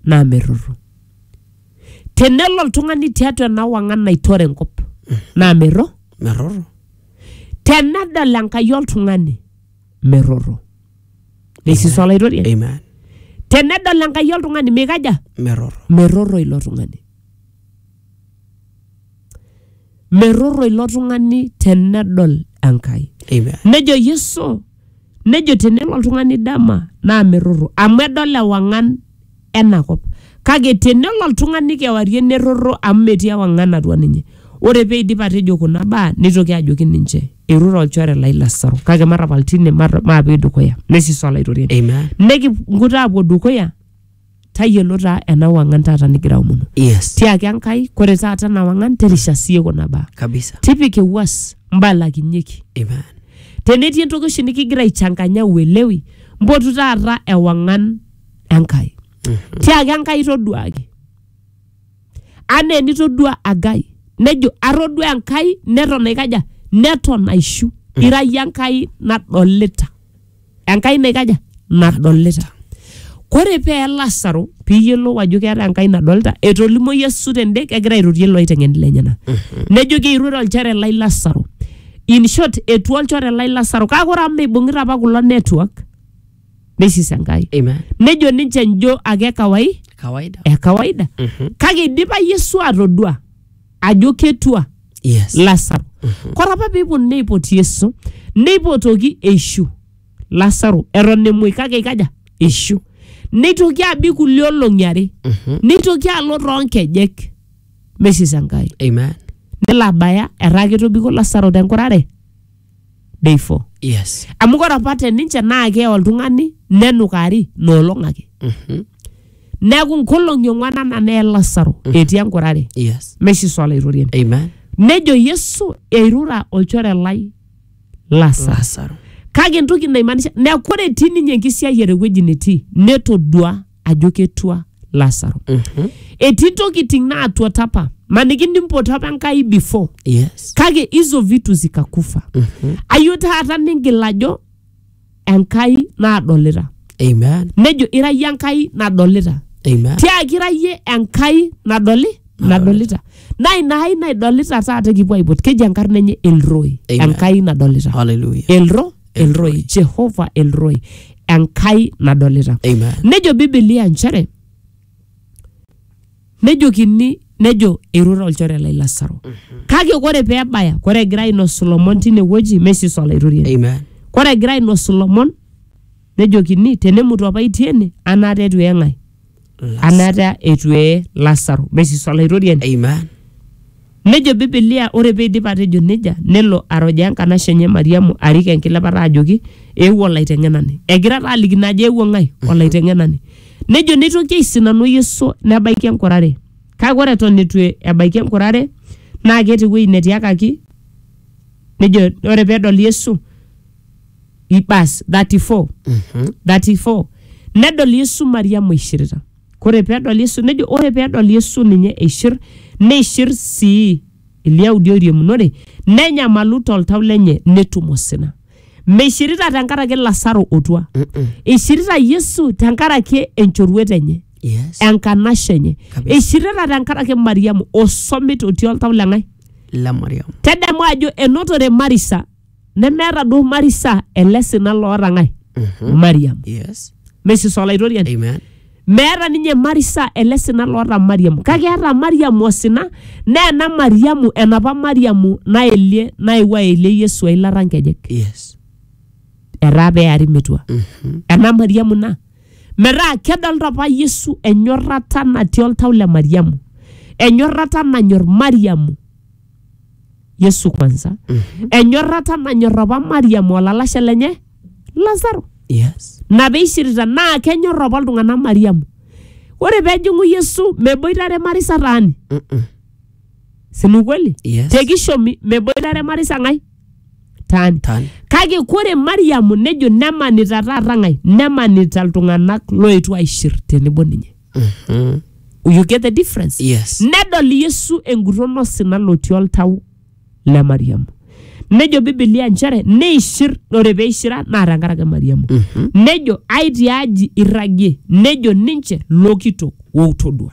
naa merrorro. Tenelo oltung'ani tiatua ena wang'an naitore enkop naa merro. merrorro Tenedol Enkai oltung'ani merrorro. Neisisu olaitoriani. amen Tenedol Enkai oltung'ani meikaja? merrorro merrorro ilo tung'ani. meroro ilo tung'ani tenedol Enkai. Amen. Nejo Yesu, nejo tenelo oltung'ani dama naa meroro amu edol ewang'an ena kop. Kake tenelo oltung'ani kewarie neroro amu metii ewang'an atua ninye. Ore peidip atejo kuna baa neitoki ajoki ninche, eirure olchore lai Lasaro kake matapal tine mata- maape dukuya. Nesis Olaitoriani. Amen. Nikingut aapuo dukuya tayiolo taa ena wang'an taata nigira aomonu yes tiaki enkai kore taata ena wang'an terisha siye kuna baa kabisa tipika ewuas mbalakinyeki amen tenetii entoki oshi nikigira aichanganya uelewi mpotu taata ewang'an enkai tiaki enkai toduaki anaa enitodua agai nejo atodua enkai neton aikaja neton aishu ira yie enkai nadolita Enkai naikaja? Nadolita. Kore pee eye Lasaro pee iyiolou ajo keeta Enkai nadolita, etolimo Yesu tende kegira airorie iloiteng'eni lenyena. Nejoki eiruore olchore lai Lasaro. In short, etua olchore lai Lasaro kake ore amu meibung'ita apa kulo network neisis Enkai. Amen. Nejo ninche njo ake kawai Kawaida. e kawaida. Kake eidipa Yesu atodua ajo ketua Yes. lasaro kore apa peeponu neipot yesu neipotoki eishu lasaro eton emuoi kake ikaja eishu neitoki abik kulie olong'i are neitoki alo toonkejek mesisa enkai Amen. nelo abaya etaa ketobiko lasaro tenkurare day four yes amu ore apa te ninche naa kee oltung'ani nenukari noolong ake Mhm. neeku nkolong'i ong'wan ana nee lasaro etii enkurare yes meshi swala itorien amen nejo yesu eirura olchore lai lasaro lasaro kake entoki naimaanisha neeku ore etii ninye enkisiayiare ewueji netii netodua ajo ketua lasaro Mhm. etii tokiting naatuata apa maniki nimpoto apa enkai before Yes. kake hizo vitu zikakufa Mhm. ayo taata ningil ajo enkai naadolita Amen. nejo ira yie enkai nadolita Amen. tiaki ira yie enkai nadoli nadolita naa ina ai naidolita taata kipuo aipot keji enkarna enye elroi Amen. enkai nadolita Hallelujah. elro elroi jehova elroi enkai nadolita Amen. nejo bibilia nchere nejokini nejo eirura olchore lai lasaro kake ore pee ebaya ore egira ainosu lomon tine wueji mesiso olaitoriani Amen. ore egira ainosu lomon nejokini tenemutu apa itii ene anaata etu eng'ae amu etaa eitu ee Lasaro. Mesis Olaitoriani. Amen. Nejo Bibilia ore peidip atejo neija nelo arojaa enkanashe enye Mariamu arik enkilepata ajoki eewuo olaiteng'enani. Egira taa alikino ajo eewuo ng'ae? Olaiteng'enani. Nejo neitoki aisinanu Yesu nebaiki enkurare. Kake ore eton eitu ebaiki enkurare naa keeta ewueji netiakaki nejo ore pedol Yesu ibas 34 34 nedol yesu mariamu eishirita kore peedol yesu nejo ore peedol yesu ninye eishir neishir sii ilyaudi oiriamunore nenyamalu toltau lenye netum osina meishirita tenkaraki lasaro otua eishirita yesu tenkaraki enchoruet enye yes enkanashe enye Kabisa. eishirita tenkaraki mariamu osomit otii oltau leng'ae le mariam tadamu ajo enotore marisa nemeeta duo marisa ele sina loota ng'ae mariam Yes. mesis olaitoriani Amen. meeta ninye marisa ele sina loota mariamu kake eeta mariamu osina naa ena mariamu enapa mariamu naelie naewuo aelie yesu eilata nkejek Yes. etaa peari metua Mhm. ena mariamu ina metaa kedolta apa yesu enyorrata natii oltau le mariamu enyorrata nanyor mariamu yesu kwanza enyorrata nanyor apa mariam olalashe lenye lasaro yes na peishirita naa kenyor apa iltung'anak mariamu ore pejing'u yesu meboitare marisa taani Mm-mm. sinu kweli Yes. tekishomi meboitare marisa ng'ae taani Tan. kake kore mariamu nejo nemanita taata ng'ae nemanita iltung'anak loetuo aishir tenebo ninye Mhm. you get the difference Yes. nedol yesu enguton osina lotii oltau le mariamu nejo bibilia nchere neishir ore peishira naa tenkaraki mariamu Mhm. nejo ai tiaji irragie nejo ninche lokitok woutodua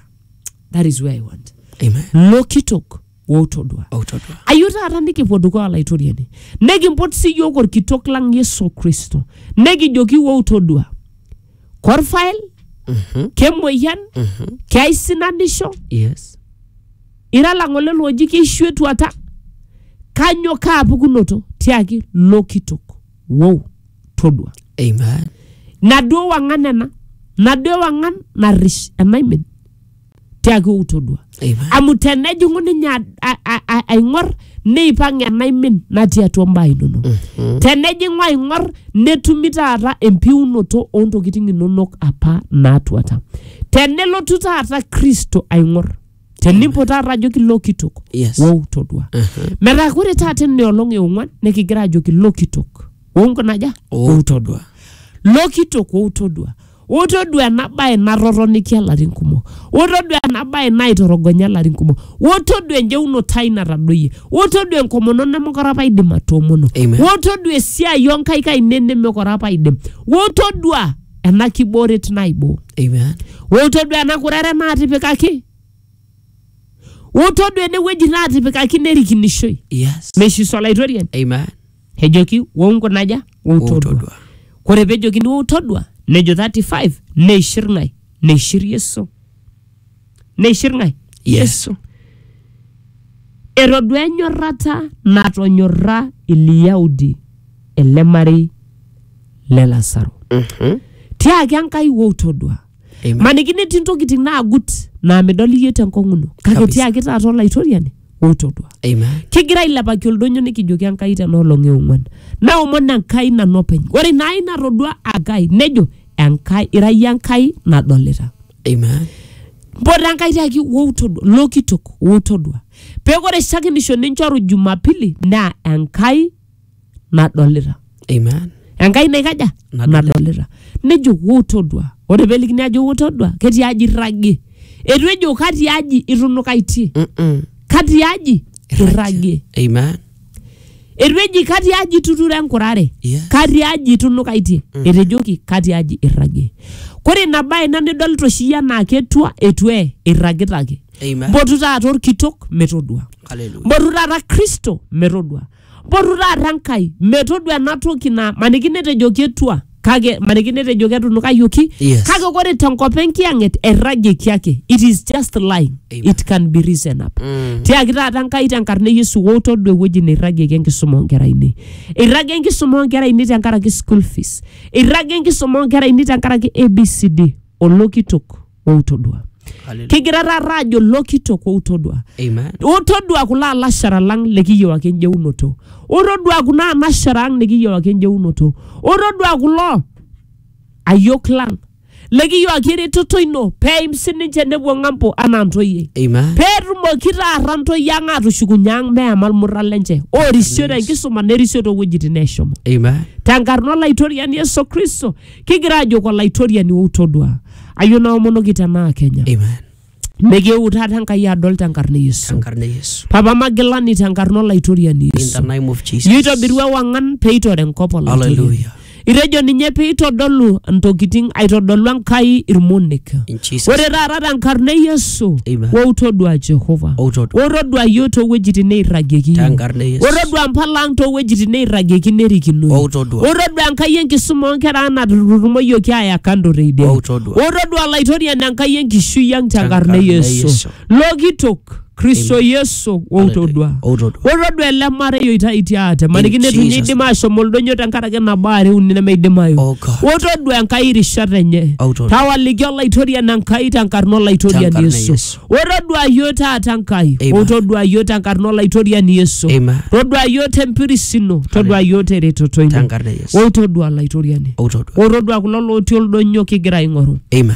that is where i want Amen. lokitok woutodua outodua ayieu taata nikipuo dukuya olaitoriani nikimpot sii yiok orkitok lang yesu kristo nikijoki woutodua korfael kemoyian keaisinanisho yes ira lang'ole looji keishu etuata kanyo kaapukunoto tiaki lo kitok wou todua amen naduo wang'an ena naduo wang'an narrish enaimin tiaaki outodua Eipa. amu tenejing'u ninye a- a- a- a- aing'or neipang' enaimin natii atua mbaa inonok tenejing'u aing'or netumi taata empiunoto oontokitin inonok apa naatuata tenelotu taata kristo aing'or tenimpo taata ajoki lo kitok Yes. wou todua metaa kore taata ina olong eong'uan nikigira ajoki lo kitok wou nkunaja Wou wou todua lo kitok wou todua Wotodua ena bae natotonikia larin kumok. Wotodua ena bae naitorogonya larin kumok. Wotodua enjeunoto ai natadoyie. Wotodua enkomono nemekure apa aidim atoomono. Amen. Wotodua esiai oo nkaik ainei nemekure apa aidim. Wotodua ena kibooret naiboo. Amen. Wotodua ena kurere naatipikaki. Wotodua ene wueji naatipikaki nerikinishoi. Yes. Meishiso Olaitoriani. Amen. ejoki wou nkunaja wou Wou todua todua. kore pejokini wou todua nejo 35 neishir ng'ae neishir yesu neishir ng'ae Yeah. yesu etodua enyorrata natonyorra ilyaudi ele marei le lasaro tiaki enkai wou todua Amen. maniki netii ntokitin naagut naa midol iyie tenkong'uno kake Kabisa. tiaki taata olaitoriani otodua Amen. kigira ailepaki oldonyo nikijoki enkai tena olong eong'uan naomon enkai nanu openy ore ina ai natodua enkai nejo enkai ira iyie enkai nadolita Amen. mpoto enkai tiaki woutodua lokitok wotodua peeku ore shakenisho ninchoru jumapili naa enkai nadolita Amen. enkai naikaja Nadolita. nadolita nejo wou todua ore pelikini ajo wou todua ketii aji irragie etu ejo katii aji itunukaitie Mm-mm. katii aji irragie Amen. etu eji katii aji ituturo enkurare Yes. katii aji itunukaitie etejoki katii aji irragie kore ina bae ina nidolita oshi iyie anaa ketua etu ee irragita ake Amen. mpotu taata orkitok metodua Hallelujah. mpotu taata kristo metodua Mpotu taata Enkai metodua ena toki na maniki netejoki etua kake maniki netejoki etunukayioki Yes. kake ore tenkop enkiyang'et erragieki ake it is just lying Amen. it can be risen up Mm. tiaki taata Enkai tenkarna e Yesu wou todua ewueji neirragieki enkisuma oonkera ainei eirragie enkisuma oonkera ainei tenkaraki school fees eirragie enkisuma oonkera ainei tenkaraki ABCD olokitok outodua Hallelujah. kigira taata ajo lokitok outodua Amen. utodua kulo alashara lang likiyiewaki enjeunoto utodua kuna anashara ang nikiyiewaki enjeunoto utodua kulo ayiok lang likiyiewaki eretoto ino peim sininche nepuo ng'ambo anaa ntoyie Amen. peetumoki taata ntoyie ang atushukunye ang meema ilmurra lenche orisio tenkisuma nerisio toowuejitin neeshomo Amen. tenkarna olaitoriani yesu kristo kigira ajoki olaitoriani outodua ayieu naomonoki tenaa kenya Amen. mekieu taata enkai adol tenkarna e yesu Tenkarna e Yesu. papa magilani tenkarna olaitoriani In the yesu name of Jesus. nitobiru ewang'an peitore enkop olaitoriani Hallelujah. itejo ninye peitodolu ntokitin aitodolu enkai irmonek In Jesus. ore taata tenkarna e yesu Amen. wo utodua jehova O utodua. wo todua yiok toowuejitin neirragieki yiok. Tenkarna e Yesu. wo todua mpala ang toowuejitin neirragieki nerikino O utodua. wo todua enkai enkisuma oonkera ang natutumoyioki aaya kando teidie O utodua. wo todua olaitoriani enkai enkishui ang tenkarna e Tenkarna e yesu Yesu. lokitok kristo yesu outodua Outodua. otodua ele marei oitaitie ate maniki In netunye Jesus' idim ashom oldonyo tenkaraki nabo are uni nemeidimayu Oh God. otodua enkai rishat enye Outodua. tawaliki olaitoriani enkai tenkarna olaitoriani Tenkarna yesu Yesu. otodua yiok taata enkai Amen. otodua yiok tenkarna olaitoriani yesu Amen. todua yiok tempiris ino todua yiok teretoto ino Tenkarna Yesu. otodua olaitoriani Outodua. otodua kulo lotii oldonyo kigira aing'oru Amen.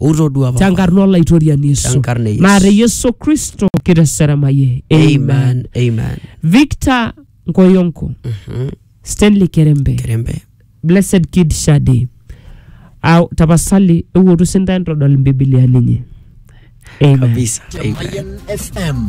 ou todua papa tenkarna olaitoriani Yesu. Tenkarna e Yesu. Maata Yesu Kristo kiteseremayie. amen amen Victor Nkoyonko, Mhm. Stanley Kerembe, kerembe Blessed Kid Shade. Au tapasali ewotu sinta entodol mbibiliani inyi. Amen. kabisa amen Mayan FM.